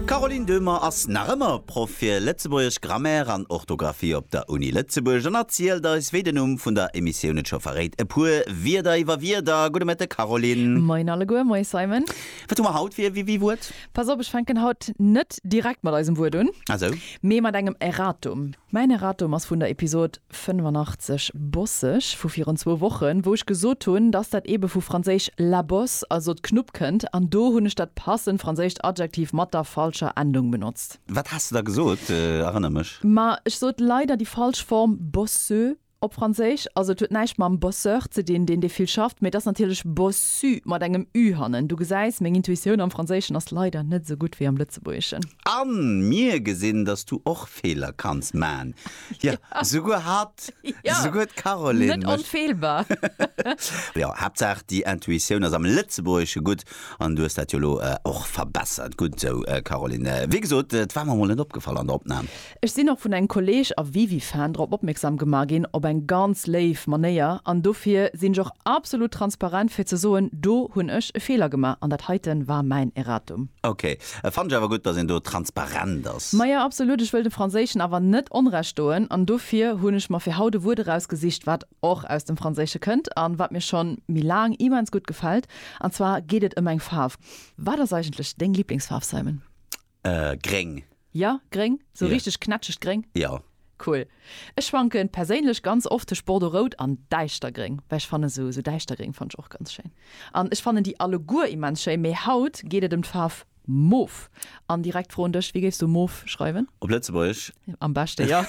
D'Caroline Döhmer ass nach ëmmer Proff fir Lëtzebuergesch, Grammaire an Orthografie op der Uni Lëtzebuerg an erzielt eis, wéi den Numm vun der Emissioun et scho verréit, e puer Wierder iwwer Wierder. Gudde Mëtteg, Caroline. Moien alleguer, moie Simon. Wat hu mer haut fir e Wiwi-Wuert? Pass op, ech fänken haut net direkt mat eisem Wuert un, Ah, sou. mee mat engem Erratum. Mäin Erratum ass vun der Episod 85 Bosseg vu virun zwou Wochen, wou ech gesot hunn, dass dat eebe vu franséisch la bosse, also d'Knupp, kënnt. An do hunn ech dat passend franséischt Adjektiv mat der falscher Endung benotzt. Wat has de da gesot? Erënner mech. Ma ech sot leider déi falsch Form bosseux. Op Franséisch, also et huet näischt mam Bosseur ze dinn, deen dee vill schafft, mee et ass natierlech bossu mat engem ü hannen. Du gesäis, meng Intuitioun am Franséischen ass leider net esou gutt wéi am Lëtzebuergeschen. A mir gesinn, dass du och Feeler kanns man. Jo, souguer hatt. Jo, Souguer d'Caroline mécht. Net onfeelbar. Jo, Haaptsaach déi Intuitioun ass am Lëtzebuergesche gutt an du hues dat jo elo och verbessert. Gutt esou, Caroline. Wéi gesot, et war mer emol net opgefall an der Opnam. Ech sinn och vun engem Kolleg a Wiwi-Fan drop opmierksam gemaach ginn, op eng ganz léif Manéier, an dofir sinn ech och absolut transparent fir ze soen, do hunn ech e Feeler gemaach an dat heiten war mäin Erratum. Ok, et fannen ech awer gutt, dass een do transparent ass. Maja, absolut, ech wëll dem Franséischen awer net Onrecht doen an dofir hunn ech mer fir haut e Wuert erausgesicht, wat och aus dem Franséische kënnt a wat mir schonn méi laang immens gutt gefält, an zwar geet et ëm eng Faarf. Wat ass eigentlech deng Liblingsfaarf, Simon? Äh gréng. Ja, gréng, sou richteg knätschegt gréng? Jo. Cool. Ech schwanken perséinlech ganz oft tëscht Bordeaux-rout an Däischtergréng, well ech fannen sou, sou Däischtergréng fannen ech och ganz schéin. An ech fannen déi alleguer immens schéi, mee haut geet et ëm d'Faarf Mof. An direkt d'Fro un dech, wéi géifs du Mof schreiwen? Op Lëtzebuergesch? Am beschte jo.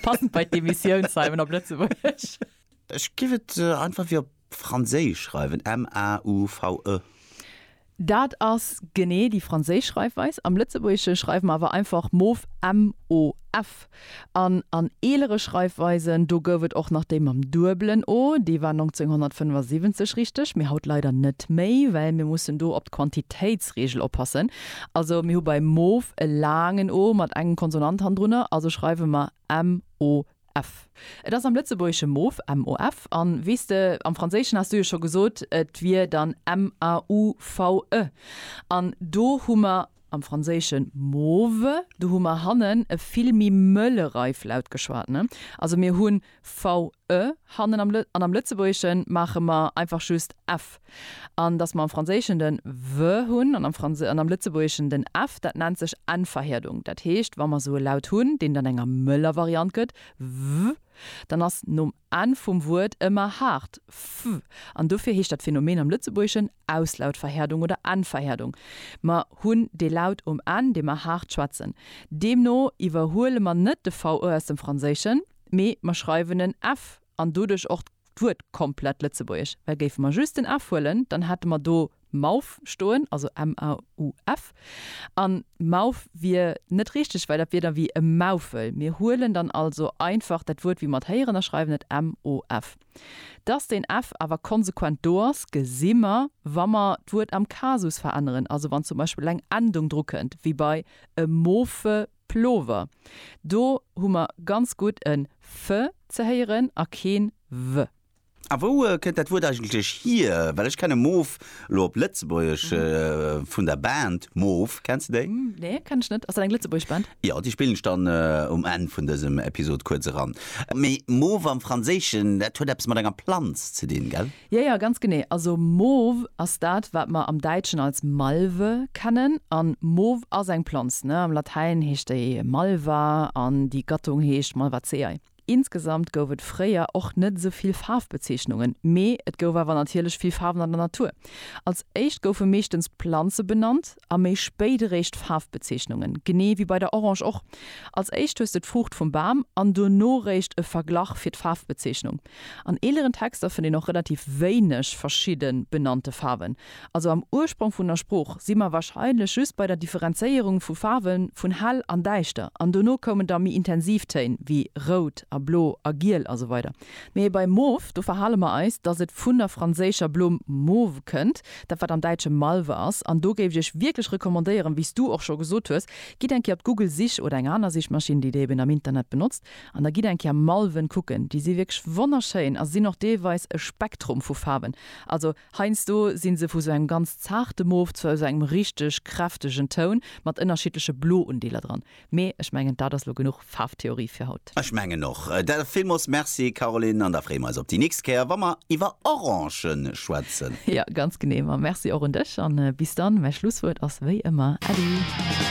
Passend bei d'Emissioun, Simon, op Lëtzebuergesch. Ech géif et einfach wéi op Franséisch schreiwen, m-a-u-v-e. Dat ass genee déi franséisch Schreifweis. Am Lëtzebuergesche schreiwe mer awer einfach mof, m-o-f. An an eelere Schreifweisen, do gouf et och nach déi mam duebelen o, déi war 1975 richteg, mee haut leider net méi, well mir mussen do op d'Quantitéitsreegel oppassen. Also mir hu bei mof e laangen o mat engem Konsonant hannendrunner, also schreiwe mer m-o-f. MOF. Et ass am Lëtzebuergesche Mof, MOF. An, weess de, am Franséischen has du jo scho gesot, et wier dann MAUVE. An do hu mer, am Franséischen mauve, do hu mer hannen e vill méi mëlle Reiflaut geschwat, ne? Also mir hu VE hannen am, an am Lëtzebuergesche maache mer einfach just F. An dass mer am Franséischen den w hunn an am Franse an am Lëtzebuergeschen den f, dat nennt sech N-Verhierdung. Dat heescht, wa mer esou e Laut hunn, deen dann enger mëller Variant gëtt, w, dann ass nom n vum Wuert ëmmer haart f. An dofir heescht dat Phänomen am Lëtzebuergeschen Auslautverhierdung oder N-Verhierdung. Mer hunn dee Laut um n, dee mer haart schwätzen. Deemno iwwerhuele mer net de v aus dem Franséischen, mee mer schreiwen en f An doduerch och d'Wuert komplett lëtzebuergesch, well géife mer just den f huelen, dann hätte mer do mauf stoen, also m-a-u-f, a mauf wier net richteg, well dat wier da wéi e Maufel. Mir huelen dann also einfach dat Wuert wéi mer et héieren a schreiwen et m-o-f. Dass den f awer konsequent do ass, gesi mer, wa mer d'Wuert am Kasus veränneren, also wann zum Beispill eng Endung drukënnt, wéi bei e mofe Plover. Do hu mer ganz gutt e f ze héieren a keen w. A wou kënnt dat Wuert eigentlech hier? Well ech kenne Moof elo op Lëtzebuergesch vun der Band Moof. Kenns de déi? Nee, kennen ech net. Ass dat eng lëtzebuergesch Band? Jo, déi spillen ech dann um Enn vun dësem Episod kuerz eran. Mee Moof am Franséischen, dat huet eppes mat enger Planz ze dinn, gell? Jo, jo, ganz genee. Also Mauve ass dat, wat mer am Däitschen als Malve kennen. An Mauve ass eng Planz, ne? Am Latäin heescht déi Malva an déi Gattung heescht Malvaceae. Insgesamt gouf et fréier och net esou vill Faarfbezeechnungen, mee et gouf awer natierlech vill Faarwen an der Natur. Als éischt goufe meeschtens d'Planze benannt a méi spéit eréischt d'Faarfbezeechnungen, genee wéi bei der Orange och. Als éischt hues de d'Fruucht vum Bam an dono réischt e Verglach fir d'Faarfbezeechnung. An eeleren Texter fënnt een och relativ wéineg verschidde benannte Faarwen. Also am Ursprong vun der Sprooch si mer warscheinlech just bei der Differenzéierung vu Faarwe vun hell an däischter an dono koumen da méi intensiv Téin wéi rout a blo a giel a sou weider. Mee bei mauve, do verhale mer eis, datt et vun der franséischer Blumm mauve kënnt, dat wat am Däitsche Malve ass. An do géif ech Iech wierklech recommandéieren, wéi s Du och scho gesot hues, gitt eng Kéier op d'Google-Sich oder eng aner Sichmaschinn, déi Der eben am Internet benotzt, An da gitt eng Kéier Malven kucken, déi si wierklech wonnerschéin a se sinn och deelweis e Spektrum vu Faarwen. Also heiansdo si se vu sou engem ganz zaarte Mof zu sou engem richteg kräftegen Toun mat ënnerschiddleche Blo-Undeeler dran. Mee ech mengen, dat ass elo genuch Faarftheorie fir haut. Ech mengen och. Da villmools Merci, Caroline, an da freeë mer eis op déi nächst Kéier, wa mer iwwer Orange schwätzen. Jo, ganz genee. Ma Merci och un dech an bis dann. Mäi Schlusswuert ass wéi ëmmer Äddi!